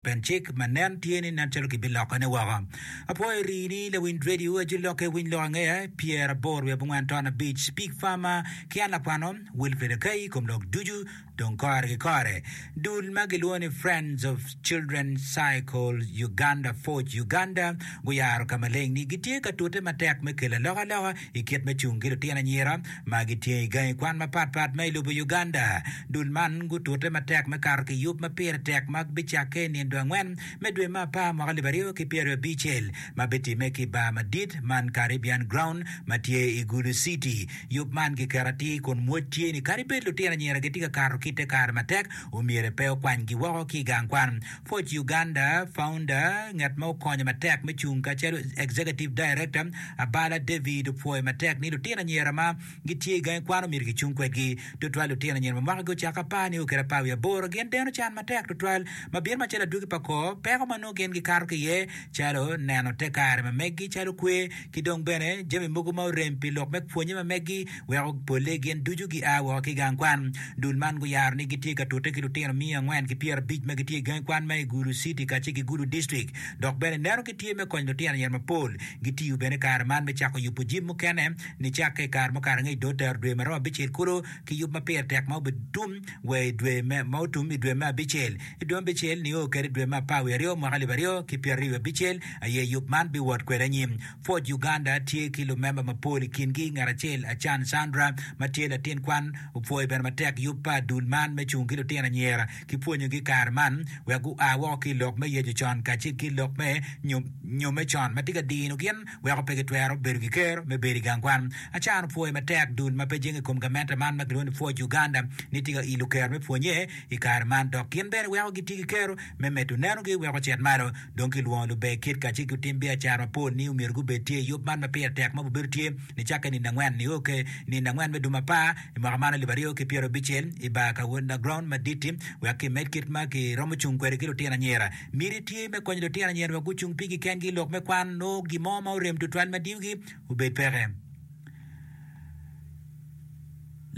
Pien cik ma nen tye ni nen calo gibilokone woko. Apwoyo rii ni lawiny radio ajo lokke winy lok angeya pyer abor wiye abongwen ton abic big pharma ki an lakwano Wilfred Akai kom lok ducu dong kore ki kore dul ma gilwongo ni Friends of Children Cycle Uganda Forge Uganda guyaro ka maleng ni gitye ka tute matek me kelo alokaloka i kit me cung ki lutino anyira ma gitye i gangi kwan mapat pat ma i lobo Uganda. Dul man gutute matek me kato ki yub ma pire tek ma bicakke i nindo angwen me dwe me apar mwaka alip aryo ki pyeraryo abicel ma bitimme ki i bar madit man Caribbean Ground ma tye i Gulu City. Yub man kiketo atir kun mwoc tye ni kadi bed lutino anyira gitye ka kato ki te kare matek, omyero pe okwanygi woko ki i gang kwan. Pwc Uganda founder, ngat ma okonyo matek me cung kacelu Executive Director, Abala David opwoyo matek ni lutino anyira ma gitye i gangi kwan omyero kicung kwedgi, tutwal lutino anyira ma mwakagi ocako apar nio kede apar wiye aboro. Gin deno can matek tutwal ma bino macalo adwogi pa kor peko ma nongo gin gikato ki iye calo neno te kare ma meggi calo kwer ki dong bene jami mogo ma orem pi lok me pwonye ma meggi. weko polle gin ducu gia woko ki gang kwan. Dul man guyaro ni gitye ka tute ki lutino miya angwen ki pyerabic ma gitye i gangi kwan ma i Gulu City kacel ki Gulu District dok bene neno gitye me konyo lutino anyira mapol. Gitiyo bene kare man me cako yubo jim mukene nicakke i kare mukato angec dong otero dwe ma romo abicel kulu ki yub ma pire tek ma obitum wa i dwe me ma otum i dwe me abicel. I dwe me abicel nio kede i dwe me apar wiye aryo mwaka alip aryo ki pyerario abicel aye yub man biwot kwede anyim. Pwod Uganda tye ki lumemba mapol i kingi ngat acel Achan Chandra ma tye latin kwan opwoyo bene matek yub pa dul man me cung ki lutino anyira ki pwonyogi kare man wek gua woko ki i lok me yeco con kacel ki lok me nyo me con ma tye ka dino gin weko pe gitwero bedo ki kero me bedo i gang kwan. Achan opwoyo matek dul ma pe jenge i kom gamente man ma kilwongo ni Pwod Uganda ni tye ka ilo kero me pwonye i kare man dok gin bene weko gitye ki kero me medo nenogi weko ocit malo Dong kilwongo lubbe kit kacel ki lutim biacara mapol ni omyero gubed tye i yub man ma pire tek ma gubedo tye nicakke nino angwen nio ki nino angwen me dwe ma apar i mwaka man alip aryo ki pyero abicel i bar ka Underground madit-ti. Wek kimed kit ma kiromo cung kwede ki lutino anyira, miti tye me konyo lutino anyira wek gucung pigi kengi i lok me kwan nongo gin mo ma orem tutwal ma diyogi obed peke.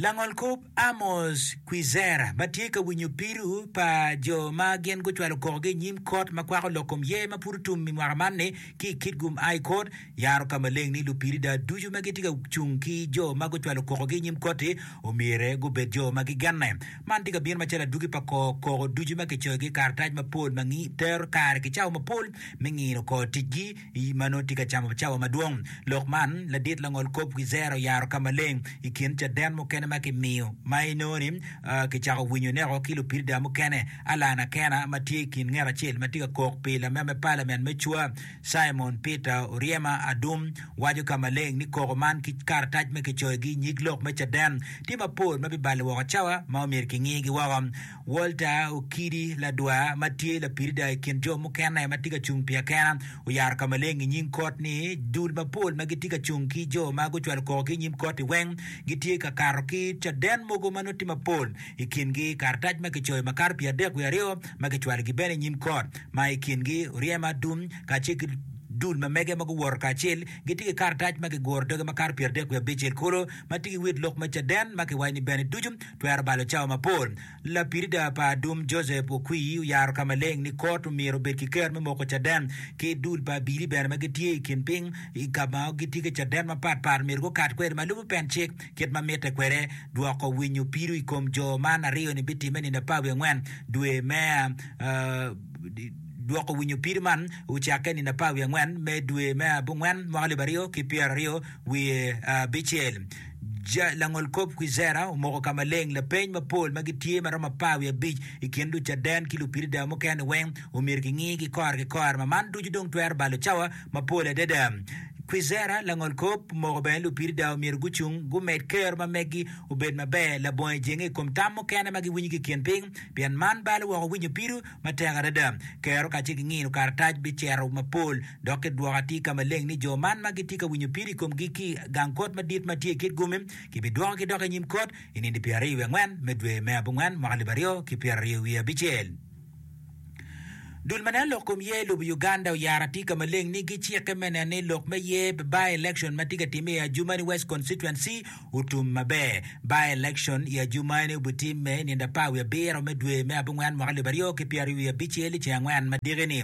Langol kop Amos Kwizera ma tye ka winyo pido pa jo ma gin gucwalo kokogi i nyim kot ma kwako lok kom ye ma pud otum i mwaka man ni ki i Kitgum High Court yaro ka maleng ni lupirida ducu ma gitye ka cung ki jo ma gucwalo kokogi i nyim koti omyere gubed jo ma gigenne. Man tye ka bino macalo adwogi pa ko koko ducu ma kicoyogi i karatac mapol ma tero kare ki cawa mapol me ngino kor ticgi I ma nongo tye ka camo cawa madwong, lok man ladit langol kop Wizer oyaro ka maleng i kin caden mukene ma kimiyo ma inongo ni kicako winyo neko ki lupirida mukene. Alan Akena ma tye i kin nget acel ma tye ka kok pi lamed me palament me cwa, Simon Peter Oryema Adum, waco ka maleng ni koko man ki karatac ma kicoyogi i nyig lok me caden tye mapol ma bibalo woko cawa ma omyero kingiyigi woko. Walter Okidi, ladwa ma tye lapirida i kin jo mukene ma tye ka cung pi akena, oyaro ka maleng i nyim kot ni, Dul mapol ma gitye ka cung ki jo ma gucwalo koko ki i nyim koti weng gitye ka kato ki caden mogo ma nongo tye mapol, i kingi karatac ma kicoyo makato pi adek wiye aryo ma kicwalogi bene i nyim kot, ma i kingi oryem adum kacel ki dul ma mege ma guwoto kacel. Gitye ki karatac ma kiguro doge makato pi adek wiye abicel kulu ma tye ki wit lok me caden ma kiwaco ni bene ducu Twero balo cawa mapol. Lapirida pa Adum Joseph Okwi oyaro ka maleng ni kot omyero obed ki ker me moko caden ki dul pa abili bene ma gitye i kin piny i ka ma gitye ki caden mapat pat omyero gukat kwede ma lubo pen cik kit ma mitte kwede. Dwoko winyo pido i kom jo man aryo ni bitimme nino apar wiye angwen dwe me Dwoko winyo pido man ocakke nino apar wiye angwen me dwe me abongwen mwaka alip aryo ki pyeraryo wiye abicel. Langolkop Kwizera omoko ka maleng, lapeny mapol ma gitye ma romo apar wiye abic i kin Lucaden ki Lupiridayo mukene-ni weng omyero kingi ki kor ki kor, ma man ducu dong twero balo cawa mapol adada. Kwizera, Langolkop, omoko bene Lupiridayo omyero gucung gumed kero ma meggi obed maber labongo ejenge i kom tam mukene ma giwinyo ki i kin piny, pien man balo woko winyo pido Matek adada, kero kacel ki ngino karatac bicero mapol, dok ki dwoko atir ka maleng ni jo man ma gitye ka winyo pire i komgi ki i gang kot madit ma tye i kit gomme kibidwokogi dok i nyim kot i nino pyera aryo wiye angwen me dwe me abongwen mwaka alip aryo ki pyera aryo wiye abicel. Dul ma neno lok kom yer lubo Uganda oyaro atir ka maleng ni gicikke me neno ni lok me yer by-election ma tye ka timme i Adjumani West Constituency otum maber. By-election i ajuma eni obitimme i nino apar wiye abiro me dwe me abongwen mwaka alip aryo ki pyeraryo wiye abicel i ceng angwen ma diki-ni.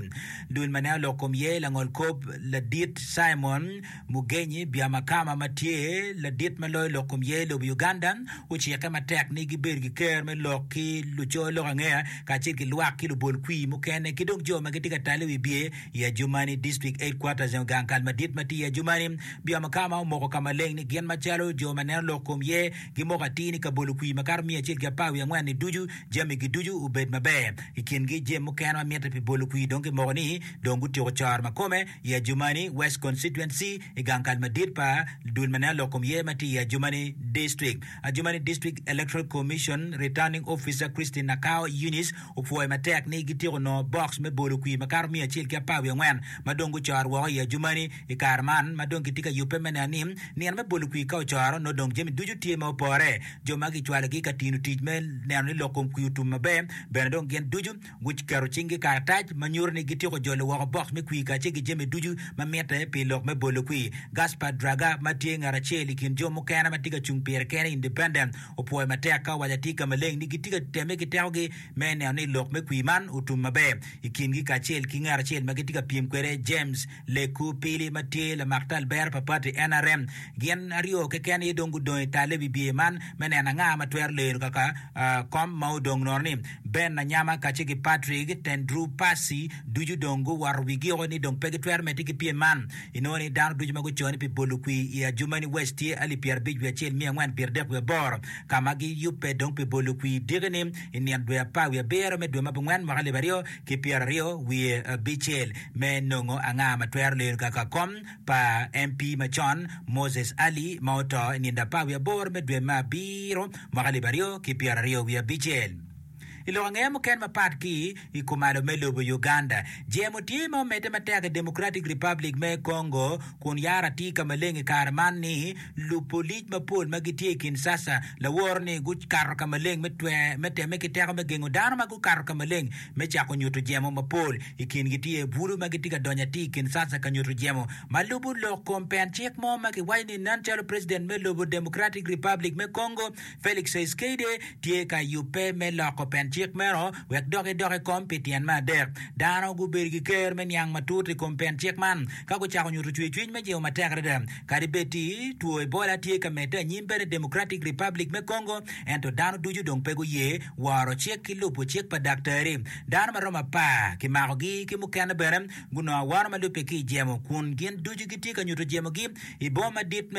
Dul ma nen olok kom ye langol kop ladit Simon Mugenyi Byamakama ma tye ladit ma loyo lok kom ye lobo Uganda ocikke matek ni gibed ki ker me lok ki luco lok angeya kacel ki lwak ki lubol kwi mukene ki dong jo ma gitye ka talle wi bye i ajuma-ni. District Headquarters Engo gang kal madit ma tye i ajuma-ni Bia ma ka ma omoko ka maleng ni gin macalo jo ma neno lok kom ye gi moko atir ni kabolo kwi makato miya acel ki apar wiye angwen ni ducu jami gi ducu obed maber i kin gi jem mukene ma mitte pi bolo kwi dong kimoko ni dong gutyeko coro ma kome i ajumani west constituency i gang kal madit pa dul ma neno lok kom ye ma tye i ajumani district ajumani district electoral commission returning officer Christine Nakao Eunice opwoyo matek ni gityeko nongo box me bolo kwi makato miya acel ki apar wiye angwen ma dong gucoro woko i ajumani I kare man ma dong kitye ka yubbe me neno ni nino me bolo kwir ka ocoro, nongo dong jami ducu tye ma opore. Jo ma kicwalogi ka tino tic me neno ni lok kom kwir otum maber bene dong gin ducu guketo cinggi i karatac ma nyuto ni gityeko jolo woko boks me kwir kacel ki jami ducu ma mitte pi lok me bolo kwir. Gaspard Draga, ma tye ngat acel i kin jo mukene ma tye ka cung pire kene, Independent, opwoyo matek ka owaco atir ka maleng ni gitye ka temme ki tekogi me neno ni lok me kwir man otum maber i kingi kacel ki ngat acel ma gitye ka pyem kwede, James Lekku Pili ma tye lamak tal bero pa pati NRM, Gin aryo keken aye dong gudong i tal i wi bye man me neno anga ma twero lero kaka kom ma odong nononi. Ben Anyama kacce ki Patrick Tendrou Passy ducu dong guwoto wigio ni dong pe gitwero medde ki pyem man. Inongo ni dano ducu ma guco ni pi bolo kwi i Adjumani West tye alip pyerabic wiye acel miya angwen pyeradek wiye aboro ka ma giyubbe dong pi bolo kwi diki-ni i nino dwe apar wiye abiro me dwe ma abongwen mwaka alip aryo ki pyeraryo wiye abicel me nongo anga ma twero lelo kaka kom pa MP macon Moses Ali ma oto i nino apar wiye aboro me dwe me abiro mwaka alip aryo ki pyeraryo wiye abicel. I lok angeya mukene mapat ki i kumalo me lobo Uganda, jemo tye ma omedde matek i Democratic Republic me Congo kun yara tye ka maleng i kare man ni Lupolic mapol ma gitye i Kinshasa laworo ni gukato ka maleng me twer me temme ki teko me gengo dano ma gukato ka maleng me cako nyuto jemo mapol. I kingi tye bulu ma gitye ka donyo atir i Kinshasa ka nyuto jemo ma lubo lok kom pen cik mo ma kiwaco ni nen calo president me lobo Democratic Republic me Congo, Felix Tshisekedi tye ka yubbe me loko pen cik meno wek dok edok i kom pi tyen me adek. Dano gubedo ki ker me niang matut i kom pen cik man ka gucako nyuto cwercwiny me jingo matek adada. Kadi bed ti two Ebola tye ka medde anyim bene i Democratic Republic me Congo, ento dano ducu dong pe guye woro cik ki lubo cik pa daktari. Dano ma romo apar kimakogi ki mukene bene gunongo awano ma lubbe ki i jemo kun gin ducu gitye ka nyuto jemogi. i boma madit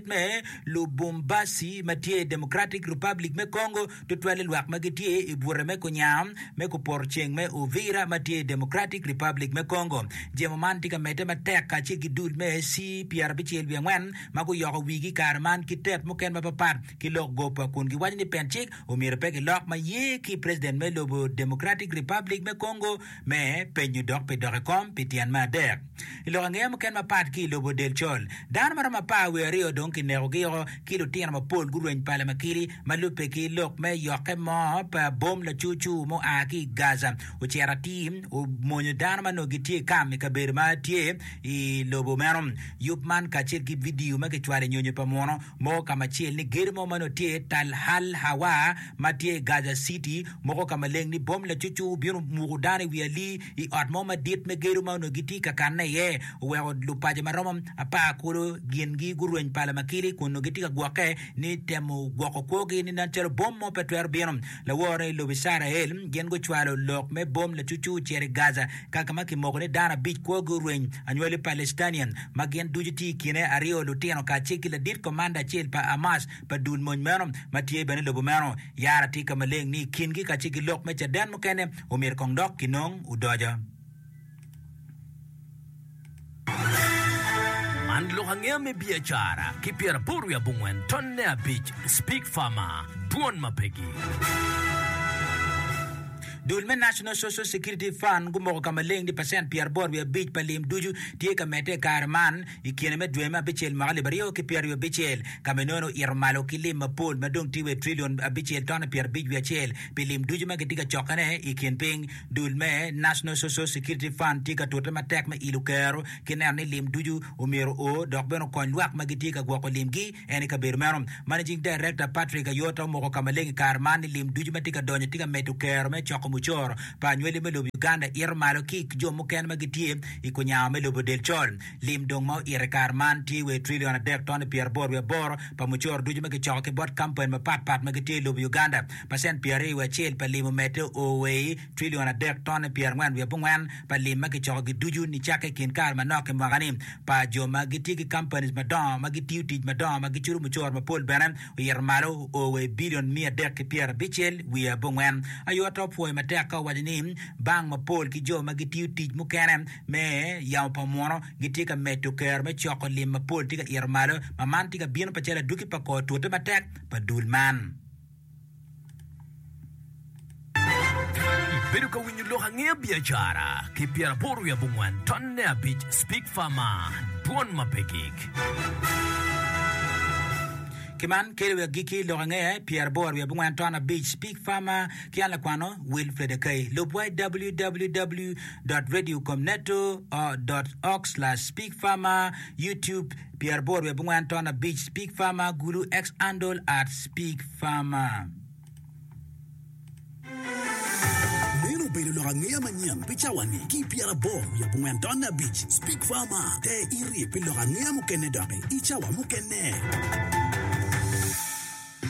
me Lubumbashi ma tye i Democratic Republic me Congo, tutwale lwak ma gitye i bute me kunya me kuporoceng me Uvira ma tye i Democratic Republic me Congo. Jemo man tye ka medde matek kacel ki dul me ci pyerabicel wiye angwen ma guyoko wigi i kare man ki tep mukene mapatpat ki lok gopa kun giwaco ni pencik omyero pe gilok ma ye ki preciden me lobo Democratic Republic me Congo me penyo dok pi dok i kom pi tyen me adek. I lok angeya muken mapat ki i lobo del col, dano ma romo apar wiye aryo dong kinekogi woko ki lutino mapol gurweny pala ma kili. Ma lubbe ki lok me yokke mo pa bom lacur cur mua ki i Gaza ocito atir omonyo dano ma nongo gitye i kam i kabedo ma tye i lobo meno. Yub man kacel ki vidio ma kicwalo i nyonyo pa muno Moko ka macel ni gedo mo ma nongo tye Tal Hal Hawa ma tye i Gaza City, moko ka maleng ni bom lacucu obino omuko dano i wi ali i ot mo madit me gedo ma onongo gitye ka kanne iye, oweko lupaco ma romo apar kulu gingi gurweny pa lamakili kun onongo gitye ka gwokke ni temo gwoko kwogi ni nen calo bom mo pe twero bino. Laworo i lobo Icrael gin gucwalo lok me bom lacucu ocito i Gaza ka ka ma kimoko ni dano abic kwogi orweny. Anywali Palestinian ma gin ducu tye i kine aryo lutino kacel ki ladit komanda acel pa Hamas pa dul mony meno ma tye bene i lobo meno. Yara tye ka maleng ni i kingi kacel ki lok me caden mukene omyero kong dok kinong odoco. Man lok angeya me biacara ki pyeraboro wiye abongwen tonne abic Speke Farmer, Dwon ma pegi. Dul me National Social Security Fund gumoko ka maleng ni pacent pyeraboro wiye abic pa lim ducu tye ka medde i kare man i kine me dwe me abicel mwaka alip aryo ki pyeraryo abicel, ka ma enono oito malo ki lim mapol ma dong tye wa i trilion abicel tonne pyerabic wiye acel pi lim ducu ma kitye ka cokkene i kin piny. Dul me National Social Security Fund tye ka tute matek me ilo kero ki neno ni lim ducu omyero o dok bene okony lwak ma gitye ka gwoko limgi en i kabedo meno. Managing Director Patrick Ayota omoko ka maleng i kare man ni lim ducu ma tye ka donyo tye ka medo kero me coko mucoro pa anywali me lobo Uganda ito malo ki jo mukene ma gitye i kunyawa me lobo del col. Lim dong ma oito i kare man tye wa i trillion adek tone pyeraboro wiye aboro pa mucoro ducu ma kicoko ki bot kampani mapat pat ma gitye i lobo Uganda. pacent pyer aryo wiye acel pa lim omedde o wa i trillion adek tone pyer angwen wiye abongwen pa lim ma kicoko gi ducu nicakke i kin kare manok ki mwaka ni pa jo ma gitye ki companies madongo ma gitiyo tic madongo ma gicudo mucoro mapol bene oyito malo o wa i billion miya adek ki pyer abicel wiye abongwen aye ato pwoyo matek ka owaco ni bank mapol ki jo ma gitiyo tic mukene me yamo pa muno gitye ka medo kero me coko lim mapol tye ka ito malo ma man tye ka bino pacalo adwogi pa kor tute matek pa dul man. Ibedo ka winyo lok ange biacara ki pyera aboro wiye abongwan ton ne abic speak fama dwon ma pe gik. Ki man kelo wa agikki lok ange pyera aboro wiye abongwan ton abic speak fama ki an lakwano Wilfred Akai lub wa i www. Radio com neto. org slash speak fama YouTube. Pyeraboro wiye abongwen ton abic Pig Farmer Gulu Ex Andol Arts Pig Farmer. Meno obedo lok angeya manyen pi cawa-ni ki i Pyeraboro wiye abongwen ton abic Pig Farmer. Te iryek pi lok angeya mukene doki i cawa mukene.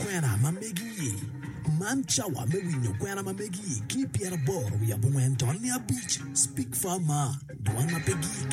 Kwena ma megi-i, Man cawa me winyo kwena ma megi-i ki i Pyeraboro wiye abongwen ton abic Pig Farmer, Dwan ma pe gik.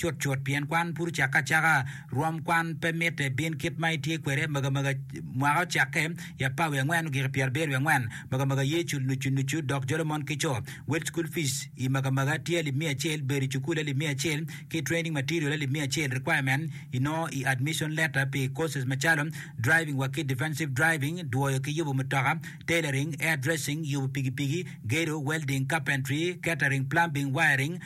cutcut pien kwan pud ocakke acaka. Rwom kwan pe mitte bin kit ma itye kwede magamaga. Mwaka ocakke i apar wiye angwen ogik i pyera abiro wiye angwen. Magamaga ye cul nucu nucu dok jolo mon ki co. Wel cukul fic i magamaga tye alip miya acel, bedo i cukul alip miya acel, ki training material alip miya acel. Requirement inongo i admission letter pi courses macalo, Driving wa ki Defensive Driving, Dwoyo ki yubo mutoka, Tailoring, Hairdressing, Yubo pigipigi, Gedo, Welding, Carpentry, Catering, Plumbing, Wiring,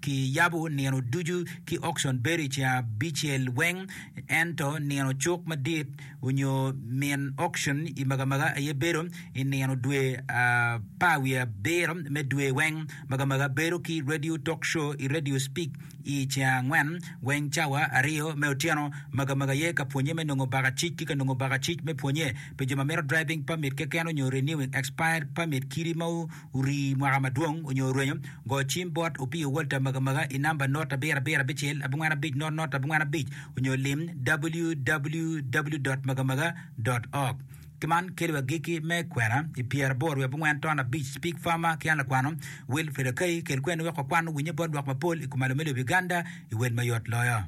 ki yabo nino ducu ki okcon bedo i ceng abicel weng, ento nino cuk madit onyo min okcon i magamaga aye bedo i nino dwe apar wiye abiro me dwe weng. Magamaga bedo ki radio talk show i radio speak i ceng angwen weng cawa aryo me otyeno. Magamaga aye ka pwonye me nongo baka cic ki ka nongo baka cic me pwonye pi jo ma mito driving permit keken onyo renewing expired permit kidi ma Orii mwaka madwong onyo orwenyo, go cim bot Opio Walter Magamaga i namba not abiro abiro abicel abongwen abic not not abongwen abic onyo lim www.magamaga.org. Ki man keli wa giki me kwena i pyera aboro wiye abongwen ton abic Pig Farmer ki an lakwano Will Fedakai kel kweni wek wakwan owinye bot lwak mapol i kom alo me lobo Uganda i wel mayot loyo.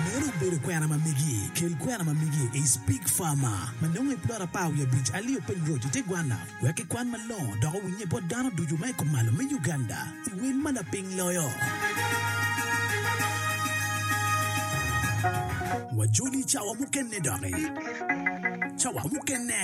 Meno obedo kwena ma megi. Kel kwena ma megi i Spig Farmer ma nongo i plot apar wiye abic alio piny road i te gwanna wek kikwan malongo dok owinnye bot dano ducu ma i kumalo me Uganda i wel ma lapiny loyo. Wajoli cawa mukene doki. Cawa mukene.